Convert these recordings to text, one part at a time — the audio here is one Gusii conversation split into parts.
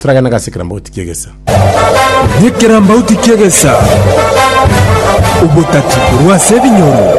Toragenda ngase ekerambauti ki'egesa. Ekerambauti ki'egesa, obotati korwa ase ebinyoro.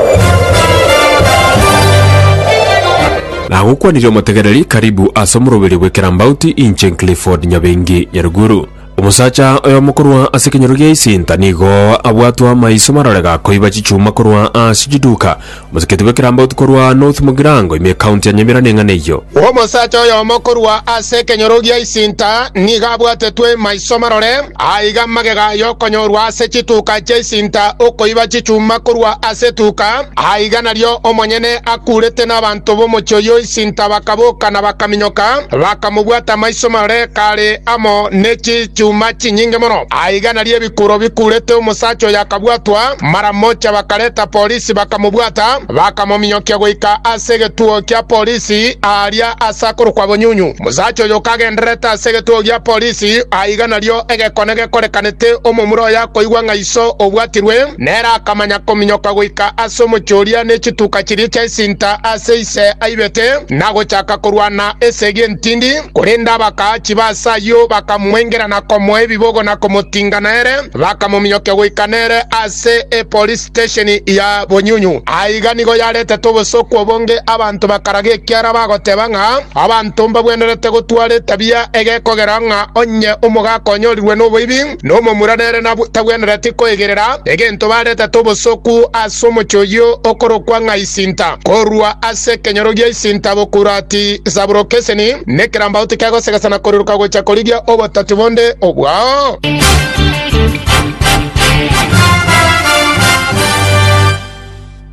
Nagokwanirie omotegereri, karibu ase omoroberio bw'ekerambauti, inche Clifford Nyabengi Nyaruguru. Omosacha oyomo korwa ase ekenyoro gia Isinta nigo abwatwe amaiso marore gakoiba chichuma korwa ase chiduka Moseketi bw'ekerambaotu korwa North Mugirango ime County ya Nyamira neng'ana eyio. Omosacha oyomo korwa ase ekenyoro gia Isinta nigo abwatetwe maiso marore, aiga magega y'okonyorwa ase chituka chia Isinta okoiba chichuma korwa ase etuka, aiga nario omonyene akuurete nabanto b'omochie oyio Isinta bakaboka na bakaminyoka, bakamobwata maiso marore kare amo ne chichuma chinyinge mono, aiga nario ebikuro bikuurete omosacha oyo akabwatwa maramocha bakareta polisi. Ase bakamobwata, bakamominyokia goika ase egetuo kia polisi aaria ase akorokwa Bonyunyu. Omosacha oyo kagendererete ase egetuo gia polisi, aiga nario egekone gekorekanete omomura oye akoigwa ng'a iso obwatirwe, nere akamanya kominyoka goika ase omochie oria ne chituka chiria chia esinta ase ise aibete, na gochaka korwana esegi entindi, korende abakaachi ba ase ayio bakamoengera na komoa ebibogo na komotinga nere, bakamominyokia goika nere ase epolisi. Stesheni ya bonyunyu. Aiga nigo yaretete obosooku obonge, abanto bakaraga ekiara bagoteba ng'a abanto mbabwenerete gotwara etabia egekogera ng'a onye omogaka onyorirwe noboibi, nomomura nere tabwenereti koigerera egento baretete obosooku ase omochie oyio okorokwa ng'a isinta. Korwa ase ekenyoro gia isinta bokurati Saburokeseni, nekerambaoti kegosegesa na koriroka gocha korigia obototi bonde obwao.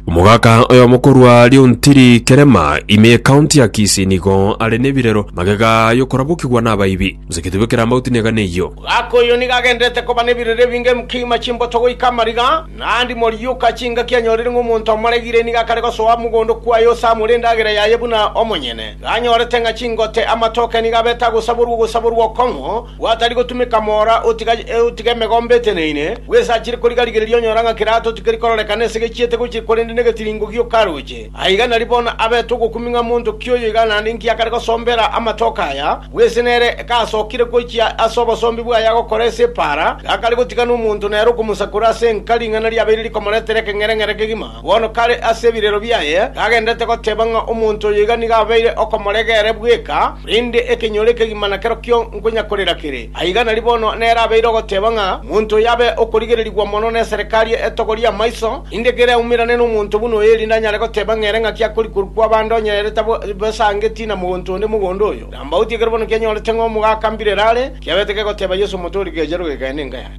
Omogaka oyomo korwa Riontiri Kerema ime ekaunti ya Kisii nigo are nebirero magega yokorabokigwa nabaibi. Mosegete bw'ekerambauti negane eyio. Omogaka oyo nigo agendererete koba nebirero ebinge emkima chimboto goika amariga, naende morioka chingaki anyorire ng'a omonto amoregire nigo akare gosoa mogondo kwaye ose amore endagera yaye buna omonyene. Iga anyorete ng'a chingote, amatoke nigo abete agosaborwa ogosaborwa okong'u, Gwatari gotumeka moora otiga otiga emegombe eteneine, bwesachire koriga rigereria onyora ng'a kera ato tikeri kororekana ase gechiete gochia korende negetiringo gioka aroche. Aiga nari bono abete ogokumi ng'a monto ki oyo iga naende inki akare gosombera amatoke aya, bwese nere gasokire gochia ase obosombi bwaye agokora ase epaara, gakare gotiga nomonto nere okomosakora ase enka ring'ana riabeire rikomoretera ekeng'ereng'ere kegima. Bono kare ase ebirero biaye tagenderete goteba ng'a omonto oyo iga nigo abeire okomorega ere bweka, korende ekenyoro ekegima nakerokio nkonyakorera kere. Aiga nari bono nere abeire ogoteba ng'a omonto oyo abe okorigererigwa mono neserikari etogorie amaiso, erinde kere aumerane nomonto buna oyo erinde anyare goteba ng'a ere ng'aki akori korwa kwaba ande onye ere tabesangetie na mogonto onde mogondo oyo. Kambauti ekero bono kianyorete ng'a omogaka mbirere are, kiabete kegoteba Yeso omotori, Gecha rogeka, aya nenka yane.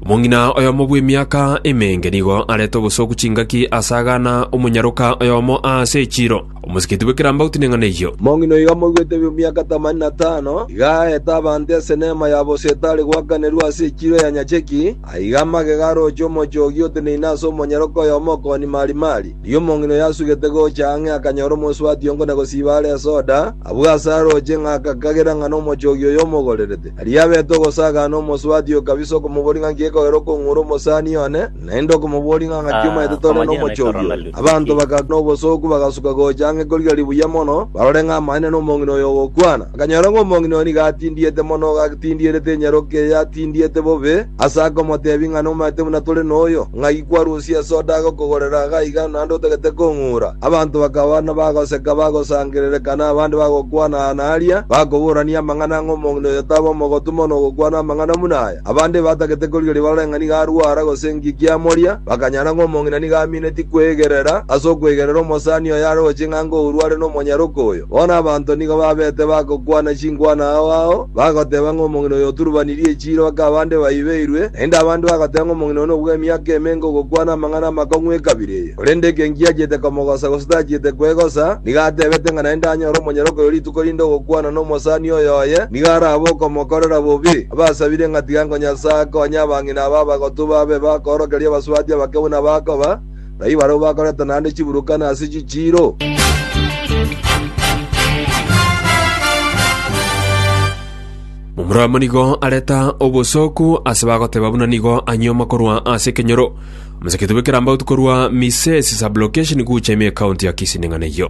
Omong'ina oyomo bw'emiaka emenge nigo arete obosoku chingaki ase agana omonyaroka oyomo aase echiiro. Omosikiti bw'ekerambe agotina eng'ana eyio. Omong'ina oigo amoigwete bw'emiaka tamani na tano, iga aete abanto esenema ya bosetari goakanerwa ase echiiro ya nyacheki, Aiga amagega aroche omochoogi oteneine ase omonyaroke oyomo okooni marimari. Rigia omong'ina oyo asugete gocha ang'e akanyora omosubati ongo na gosiiba are esoda, abwo ase aroche, ng'a agakagera ng'a nomochoogi oyo omogorerete. Aria abete ogosagana, omosubati oyo kabisa okomoboria ng'a nki gekogera okong'ura omosani one, naende okomoboria ng'a ng'aki omanyete tore nomochoogi oyo. Abanto bagakana obosooku bagasuka gocha ang'e korigia ribuya mono, barore ng'a amanyene nomong'ina oyo ogokwana. Akanyora ng'a omong'ina oo nigo atindiete mono, agatindierete enyaroke eye atindiete bobe, ase akomoteebia ng'a nomanyete buna tore noyo, ng'ai kwarusia esoda agokogorera iga iga naende otagete kong'ura? Abanto bakaba nabagoseka, bagosangererekaa, na abande bagokwana aa na aria, bakoborania amang'ana ng'a omong'ina oyo tabe omogotu mono ogokwana amang'ana buna aya. Abande batagete korigeria barore ng'a nigo arwara gose inki kiamoria, bakanyora ng'a omong'ina nigo amineti kweegerera ase okweegerera omosani oyo are gochia ng'a ango orware nomonyaroke oyo. Bono abanto nigo babete bagokwana chinkwana ao ao, bagoteba ng'a omong'ina oyo oturubanirie echiira mpaka abande baibeirwe, naende abande bagoteba ng'a omong'ina oyo nobua emiaka emenge ogokwana amang'ana amakong'u ekabira eye. Korende ekio inki achiete komogosa gose tachiete kwegosa, nigo atebete ng'a naende anyore omonyororo oyo rituko rinde ogokwana nomosani oyoye nigo arabe okomokorera bobe. Abasabire ng'a tiga ngo Nyasae akonye abang'ina aba abagotu babe bakoorokereria abasubati abake buna bakoba, na ibarabwo bakoreta naende chiburukana ase chichiiro. Omorombe nigo areta obosooku ase bagoteba buna nigo anyuoma korwa ase ekenyoro. Omosacha oito bw'ekerambaotu korwa Misesi Sub-location gocha ime County ya Kisii ning'ana eyio.